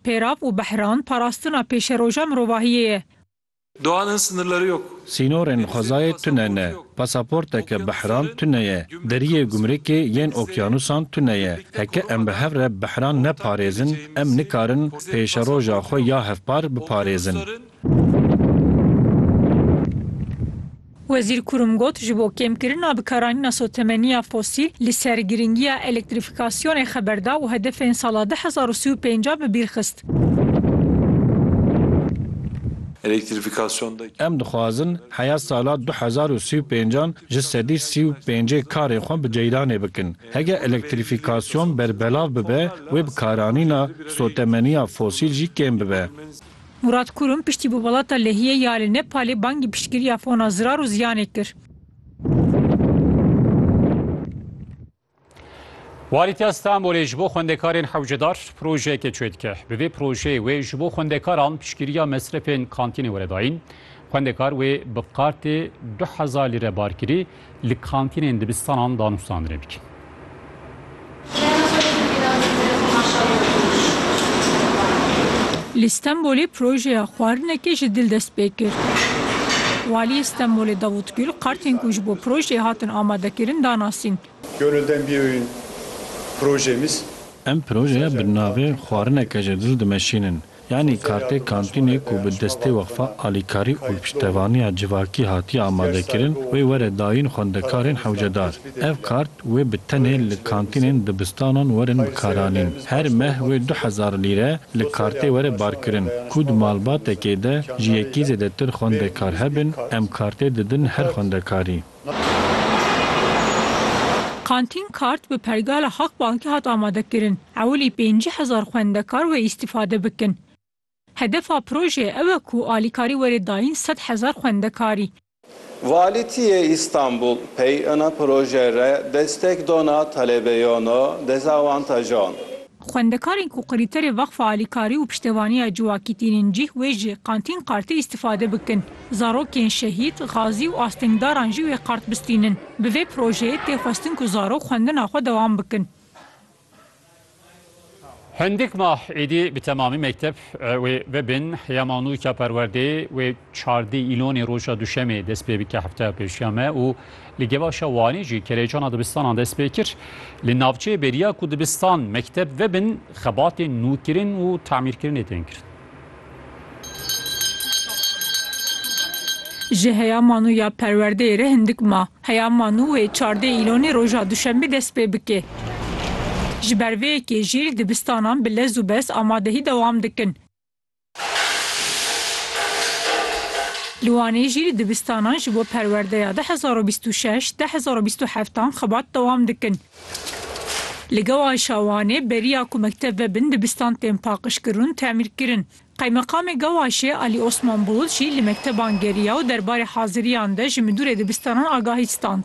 Pêrav û Behran parastina pêşeroja mirovahiyê ye. Doğan'ın sınırları yok. Sînorên xwezayê tune ne. Pasaporteke Behran tune ye. Deriyê gumrikê yên okyanusan tune ye. Heke em bi hev re Behran neparêzin, em nikarin pêşeroja xwe ya hevpar biparêzin. Wezîr Kurum got, Ji bo kêmkirina bikaranîna sotemeniya fosîl, li ser girîngiya elektrîfîkasyonê xeber da û hedefên sala du hezar û sî û pênc a bi bîr xist. Em dixwazin heya sala du hezar û sî û pênc an ji sedî sî û pêncê karê xwe bi ceyranê bikin. Hege elektrîfîkasyon berbelav bibe wê bikaranîna sotemeniya fosîl jî kêm bibe. Murat Kurum piştî bi welata Lehiyê ya li Nepalê bangî piştgiriya fona zirar û ziyanê kir. Walîtiya Stenbolê ji bo xwendekarên hewcedar projeyekê çê dike. Bi vê projeyê wê ji bo xwendekaran piştgiriya mesrefên kantînê were dayîn. Xwendekar wê bi kartê du hezar lîre barkirî Li kantînên dibistanan danûstandinê bikin. Li Stenbolê projeya xwarinekê ji dil dest pê kir. Waliyê Stenbolê Davut Gul kartên ku ji bo projeyê hatin amadekirin da nasîn. Gönülden biyoyun projemiz. Em projeya bi navê Xwarineke ji dil dimeşînin. Yanî kartê kantînê ku bi destê Weqfa Alîkarî û Piştevaniya Civakî hatiye amadekirin wê were dayîn xwendekarên hewcedar. Ev kart wê bi tenê li kantînên dibistanan werin bikaranîn. Her meh wê du hezar lîre li kartê were barkirin. Ku di malbatekê de ji yekî zêdetir xwendekar hebin, em kartê didin her xwendekarî. Kantîn Kart bi pergala Halkbankê hat amadekirin, ewilî pêncî hezar xwendekar wê îstîfade bikin. Hedefa projeyê ew e ku alîkarî were dayîn sed hezar xwendekarî. Valîtiyê Îstanbul pey ina projeyê re destek dona telebeyona dezawantajan. Xwendekarên ku krîterê Veqfa Alîkarî û Piştevaniya Ciwakî tînin cih wê ji Kantîn Kartê îstîfade bikin. Zarokên şehîd, xazî û astengdaran jî wê kart bistînin. Bi vê projeyê tê xwestin ku zarok xwendina xwe dewam bikin. Hindik mah êdî bi temamî mekteb wê bibin. Heya Manû Çaperwerdê wê Çardê îlonê roja duşemê dest pê bike hefteya pêşiya me û li gevaşa Wanê jî kerejana dibistanan dest pê kir. Li navçeyê bêriya ku dibistan, mekteb vebin xebatên nûkirin û tamîrkirinê tên kirin. Ji heya manu ya perwerdeyê re hindik ma. Heya manu wê çardê îlonê roja duşemê dest pê bike. Ji ber vê yekê jî li dibistanan bi lez û bes amadehî dewam dikin. Li Wanê jî li dibistanan ji bo perwerdeya du hezar û bîst û şeş, du hezar û bîst û heft an xebat dewam dikin. Li Gewaşa Wanê beriya ku mekteb vebin dibistan tên paqijkirun temîrkirin. Qeymeqamê Gewaşê Alî Osman Bulut jî li mekteban geriya û derbarê haziriyan de ji midûrê dibistanan agahî stand.